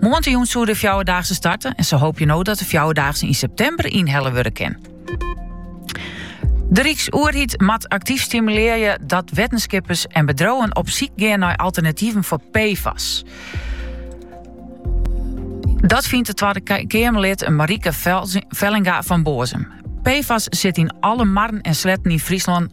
Moandeitejûn soe de fjouwerdaagse starte en ze hoopje no dat de fjouwerdaagse yn septimber ynhelle wurde kin. De Ryksoerheid moat aktyf stimulearje dat wettenskippers en bedriuwen op syk gean nei alternativen foar PFAS. Dat fynt Twadde Keamerlid Marieke Vellinga fan Boazum. PFAS sit yn alle marren en sletten yn Fryslân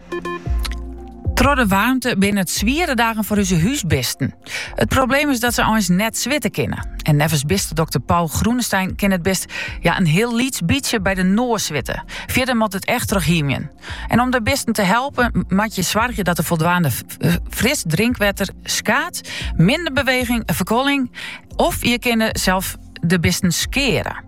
Troch de waarmte binne it swiere dagen foar onze húsbisten. It probleem is dat se eins net switte kinne. En neffens bistedokter Paul Groenestein kin het bist ja, in hiel lyts bytsje bij de noas switte. Fierder moat it echt troch hymjen. En om de bisten te helpen, moat je soargje dat der foldwaande eh, fris drinkwetter skaat, minder beweging, ferkuolling. Of je kinne sels de bisten skeare.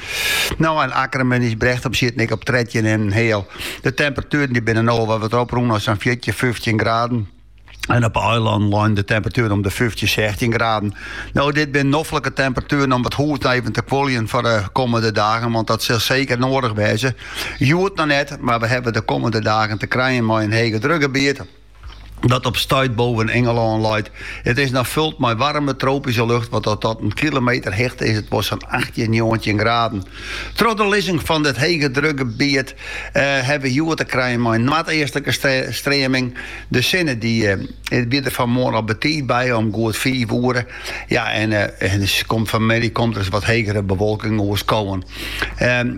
No en Akkerman is brecht op sieten ek op trettjin en in heal. De temperatueren die binnen no wat op rûn as sa'n 14, 15 graden. En op eilân lein de temperatuer om de 15, 16 graden. Nou, dit zijn noffelijke temperaturen om wat hoed even te kwoljen voor de komende dagen, want dat zal zeker nodig wezen. Joert nog net, maar we hebben de komende dagen te krijgen met een hege drukgebied. dat op stuit boppe Ingelân leit. It is noch fold mei waarme tropyske lucht, want op oardel kilometer hichte is it wol sa'n 18, 19 graden. Troch de lizzing fan dit hegedrukgebiet eh, ha we hjoed te krijen mei in noardeastlike streaming. De sinne die eh, wie der fanmoarn al betiid by, om goed fiif oere. Ja, en, eh, en komt fanmiddei komt der ris wat hegere bewolking oer skowen. Ehm,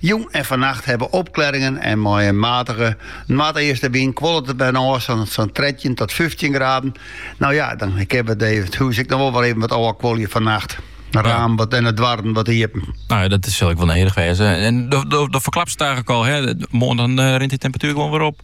Jûn en fannacht hawwe wy opklearingen en mei in matige noardeastewyn kuollet it wer ôf sa'n 13 tot 15 graden. No ja, dan kin we it hûs ek noch wol wer even wat ôfkuolje fannacht. De ramen wat en de doarren wat iepen. No ja, dat sil ek wol nedich wêze. En do, do, do ferklapst it eigenlik al, hè. Moarn dan eh, rint de temperatuer gewoan wer op.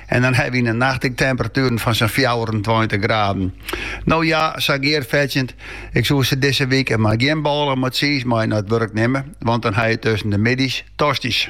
En dan hawwe wy de nachts ek temperatueren fan sa'n fjouwerentweintich graden. No ja, sa Geart fertsjinne, ik soe sizze dizze wike mar gjin bôle mei tsiis mei nei it wurk nimme, want dan ha je tusken de middeis tosty's.